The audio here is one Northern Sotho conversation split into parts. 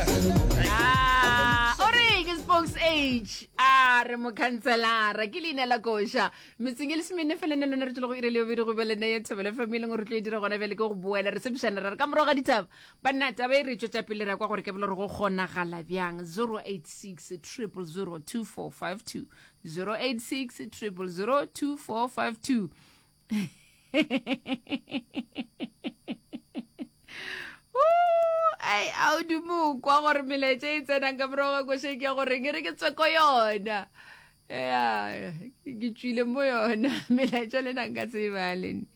Ah, o re ke spokes age a re mokhanselara ke leina la koša metseng e le semene fela ne lone re tlo go ire leo bere go be lene ye thobele fm e leng gore re tlo e dira gona bjale ke go boela re sepšana ra re ka morago ga ditaba banna taba e re tšwetša pele re ya kwa gore ke bele gore go kgonagala bjang 086 0002452 086 0002452 ai a o dumo kwa gore melaetša e tsenang ka morago ga kwešeng ke ya gore ke re ke tsweko yona ya ke tswile mo yona melaetša le nang ka tseba lene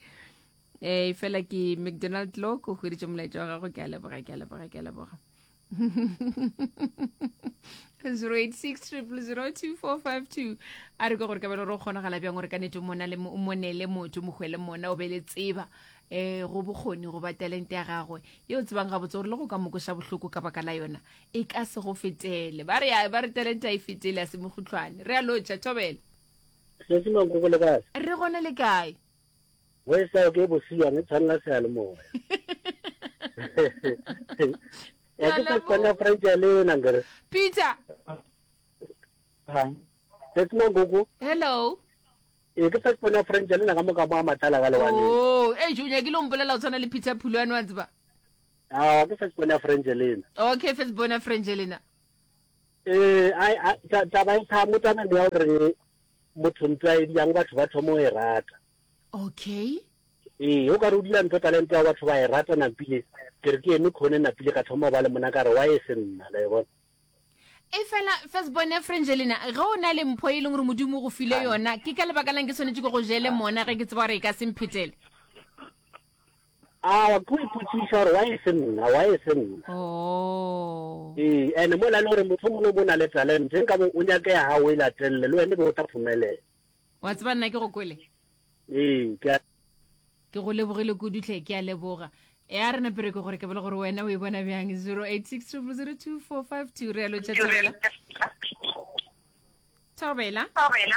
ee fela ke mcdonald lock o hweditše molaetša wa gago ke a leboga ke a leboga ke a leboga zero eight six triple zero two four five two a re ke gore kabelo re o kgonagala bjang gore ka nete mona le mo- o monele motho mokgwele mona o be le tseba um go bokgoni go ba talente ya gagwe ye o tsebang gabotse gore le go ka mokoša bohloko ka baka la yona e ka se go fetele ba re ba re talente a e fetele a se mogotlhwane re a lotšha thobela Sesi Mankoko le kae? re gona le kae Mo e sa ke bosilwane tshwanela se ya le moya. Ya ke sa kwana French ya le na ngere. Peter. Ha. That's my gogo. Hello. E ke sa kwana French ya le na ka moka ba matala ka lewane. Oh, e jo nya ke lo mpolela o tshwana le Peter Phulwane wa tsba. Ah, ke sa kwana French ya le na. Okay, first bona French ya le na. Ee, a, a, ta, taba e thamo tame ya gore motho ntho a e dirang batho ba thomo e rata. Okay. Ee, o ka re o dira ntho talente ya batho ba e rata napile ke re ke eme khone napile ka thoma ba le mona ka re wa e se nna la e bona. E fela firstborn ya Frangelina ge o na le mpho e leng gore modimo go file yona ke ka lebaka lang ke tshwanetse ke go jele mona ge ke tseba gore e ka se mphetele A wa ke o ipotšiša gore why e se nna, why e se nna? Oh. Ee, and mola e le gore mohlomong o bo na le talent, e nkabo o nyake ya gago o e latelele, le wena e be o tla phumelela. Wa tseba nna ke go kwele? Ee, ke a. Ke go lebogile kudu tlhe, ke a leboga. E a re na pereko gore ke bole gore wena o e bona bjang 0860022452 re a lo tšatšabela. Thobela. Thobela.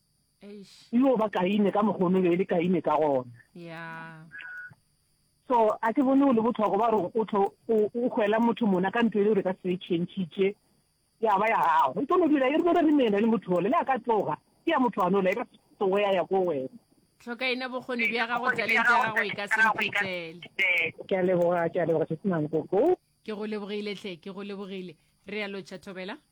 yo ba kaine ka mokgwa o be e le kaine ka gona so a ke bone o le botlhoko ba gore o tlo o gwela motho mona ka ntlo e le gore ka se change ya ba ya gago e tlo dira e re bone re mena le motho ole le a ka tloga ke ya motho ano le ka tsogo ya ya ko wena tlhoka ina bokgoni bja gago talente ya gago e ka se mphetele ke a leboga ke a leboga se senang koko ke go lebogile tle ke go lebogile re ya lotšha thobela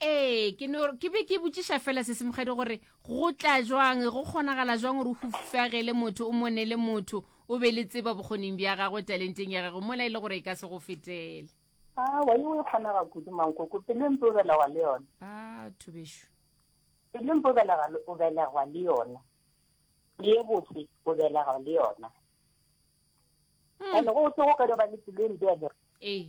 ee ke no ke be ke botšiša fela se semogadi gore go tla jwang go kgonagala jwang gore o hufagele motho o monele motho o be le tseba bokgoning bja gagwe talenteng ya gagwe mola e le gore e ka se go fetele a wa yo e kgonaga kudu mankoko pele mpe o belegwa le yona a thobešo pele mpe o belegwa le yona le botse o belegwa le yona hmm. ande go o tse go ka di ba le pelo e mpe ya ee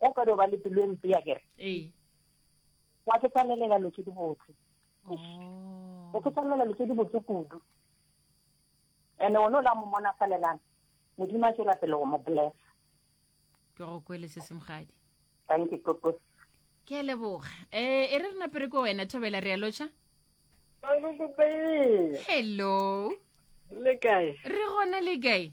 o ka no ba le pelo e mpe ya kere ee wa ke tsanelela lo tse di botse oh. o ke tsanelela lo tse di botse kudu ene one o la mo mona falelana modimo a tswela pele go mo blessa ke go kwele se semgadi thank you koko ke a leboga um e re re napere ko wena thobela re ya lotsha hello le kae re gona le kae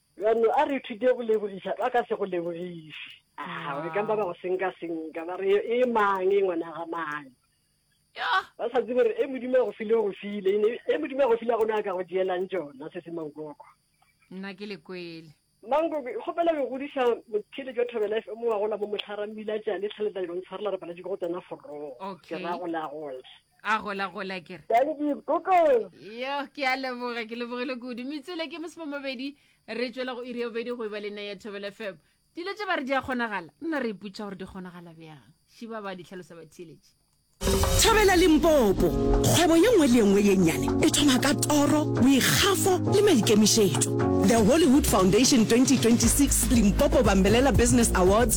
Bjalo, a re ithute go lebogiša ba ka se go lebogiše. Aa, o ekang ba ba go senka-senka, ba re, E mang, e ngwana ga mang? Ba sa tsebe gore e Modimo a go file o go file, ene e Modimo a go file a gona a ka go tšeelang tšona, se se mankoko. Nna ke le kwele. Mankoko, ke kgopela go godiša motheeletši wa Thobela FM wa gola mo Mohlara, mmila tšale, tlhaletla dilo ntshwarela re paletše ke go tsena forong. Okay. Ke ra go la gola. a gola gola ke re thank you koko yo ke a leboga ke lebogile kudu metsele ke mosemo mabedi re tswela go iri obedi go eba le nna ya thobele fm dilo tse ba re di a kgonagala nna re iputša gore di kgonagala bjang šiba ba di tlhalosa batheeletši thabela limpopo kgwebo ye nngwe le ye nngwe ye nnyane e thoma ka toro boikgafo le maikemišetšo the hollywood foundation 2026 limpopo bambelela business awards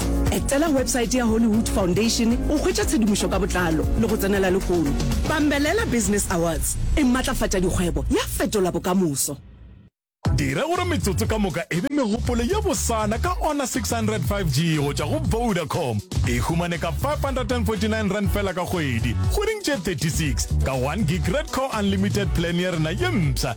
Hollywood. Etela websaete ya Hollywood Foundation go hwetša tshedimošo ka botlalo le go tsenela lehono. Bambelela Business Awards e matlafatša dikgwebo ya fetola bokamoso. Dira gore metsotso ka moka e be megopolo ye bosana ka Honor 600 5G go tšwa go Vodacom. E humane ka R549 fela ka kgwedi, kgweding tše 36, ka one gig Red Core Unlimited plan ya rena ye mpsha.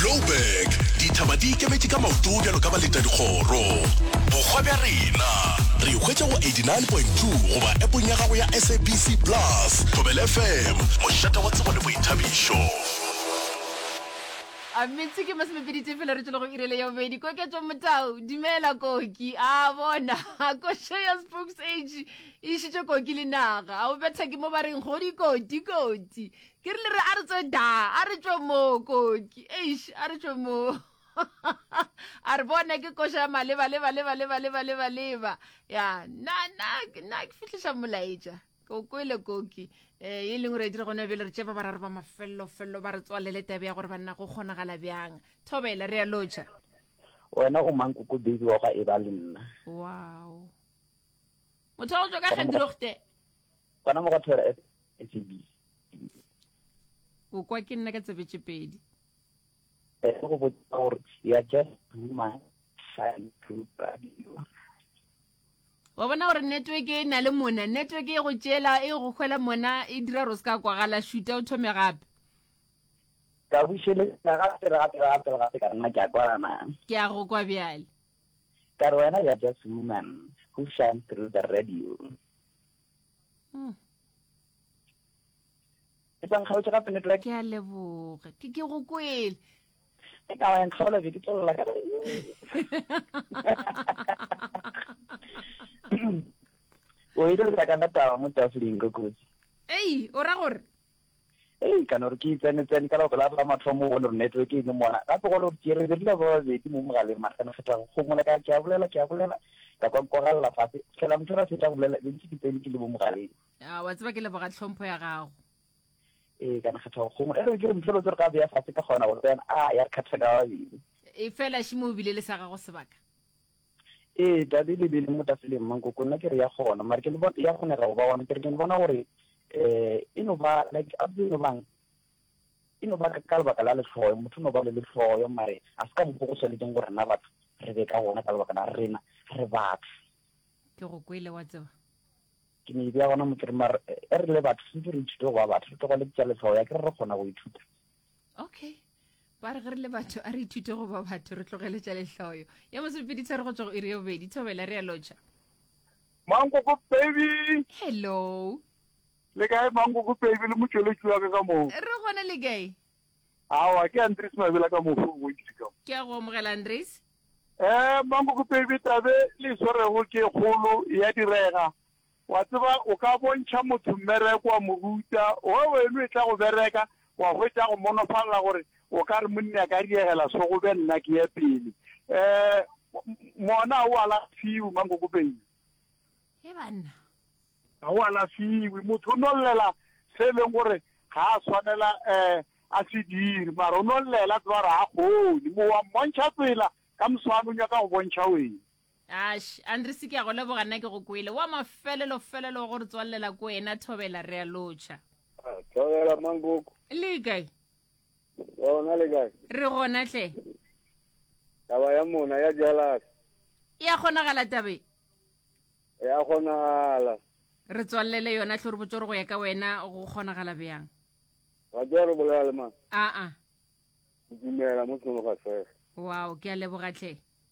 Joburg, dithaba di ikemetše ka maoto bjalo ka baleta dikgoro. Bokgwa bja rena re hwetša go 89.2 goba epong ya gago ya sabc plus thobel fm mošata wa tsebo le boithabišo a metse ke masomepedi tefela re tšwele go irele ya bobedi koketso motao dumela koki a bona košo ya spokes age E išitše koki le naga. A o betha ke mo ba reng godi koti koti. Ke rile re a re tswe da, a re tšwe mo koki. Eish, a re tšwe mo. a re bona ke koša ya maleba leba leba leba leba leba leba. Ya, na na na ke fihliša molaetša. Ke o kwele koki. Eh, e leng gore dire gona bjale re tše ba bararo ba mafello fello ba re tswalele tabe ya gore banna go kgonagala bjang. Thobela re a lotšha. Wena o mang koko baby wa gwa e ba le nna. Wow. motho wa go tšwa ka gedrogte gona mo go thora sab o kwa ke nna ka tsebetše pedi eh, go botsa gore ya just human sign group radio wa bona gore network e na le mona network e go tšela e go kgwela mona e dira gore o se ka kwagala shuta o thome gape ka bušeletsa gape gape gape gape ka nna ke a kwana ke a go kwa bjale Ka re wena ya just woman who shines through the radio. Mm. Ke tsa nkgaotše gape network. Ke a leboga. Ke ke go kwele. Ke ka wa nkgaola be ke tlolla ka. O ile re ka nna tawa mo tafoleng go kotsi. Ei, o ra gore? Ee, ka no re ke itsenetsene ka lebaka la ba mathomo bone gore network e ne mona gape gone gore ke re re dula ba babedi mo mogaleng margane feta go kgomola ka ke a bolela ke a bolela ka kwa nkogalela fase fela motho ra feta go bolela be ntse ke tsene ke le mo mogaleng a wa tseba ke leboga tlhompho ya gago ee kana kgetha go kgomola ere ke re motho lo tsere ka beya fase ka kgona gore tsena a ya re kgatha ka babedi e fela shimo o bile le sa gago sebaka Ee, tate, le beileng mo tafeleng mo, nkoko, nna ke re ya kgona, mare ke no, ya kgonega go ba gona, ke re ke no bona gore um e no ba, like, a tsebe e no bang, e no ba ka lebaka la lehloyo, motho o no ba le lehloyo, mare ga se ka mokgwa go swanetšeng gore rena batho re be ka gona, ka lebaka la rena re batho. Ke go kwele, wa tseba. Ke no e beya gona mo, ke re mare e re le batho swantse re ithute go ba batho, re tlogele tša lehloyo, akere re kgona go ithuta. okay ba re ge re le batho a re ithute go ba batho re tlogele tša lehloyo ya mosepeditshware go tswa go iri yo bobedi thobela re ya lotšha mankoko baby hello le kae mankoko baby le motšweletši wa ka ka moo re gona le kae awa ke andres mabela ka mofo o bontši ka ke ya go amogela andres um mankoko baby tabe le e swarego ke kgolo ya direga Wa tseba, o ka bontšha motho mmereko, wa mo ruta, owe weno e tla go bereka, wa hwetša a go monofalela gore o ka re, Monni a ka diegela so, go be nna ke ye pele. Um, mona ga o alafiwe, Mankokopeng. He banna. Ga o alafiwe. Motho o nollela se e leng gore ga a swanela um a se dire, mara o nollela, tseba gore ga a kgone. Mo wa mmontšha tsela, ka moswane o nyaka go bontšha wena. ash andresi ke a go leboga nna ke go kwele wa mafelelo felelo wa go re tswalela ko ena thobela re a lotšha Ah, thobela mangoko le kae wa ona le kae re gona tle taba ya mona ya jalase e a kgonagala tabe ya kgonagala re tswalele yona tlho re botsore go ya ka wena go kgonagala bjang wa tswa re bolela le mang aa ke dumela mo tsholo ga sege wow ke a leboga tlhe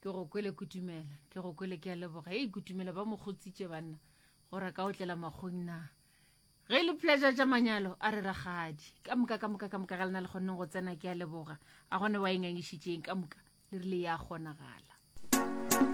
ke go kwele kutumela ke go kwele ke a leboga e kutumela ba mo kgotsitše banna gore ka o tlela makgong na ge e le pleasure tša manyalo a re ragadi ka moka ka moka ka moka ga lena le kgonneng go tsena ke a leboga a gone wa engangišitšeng ka moka le rile ya kgonagala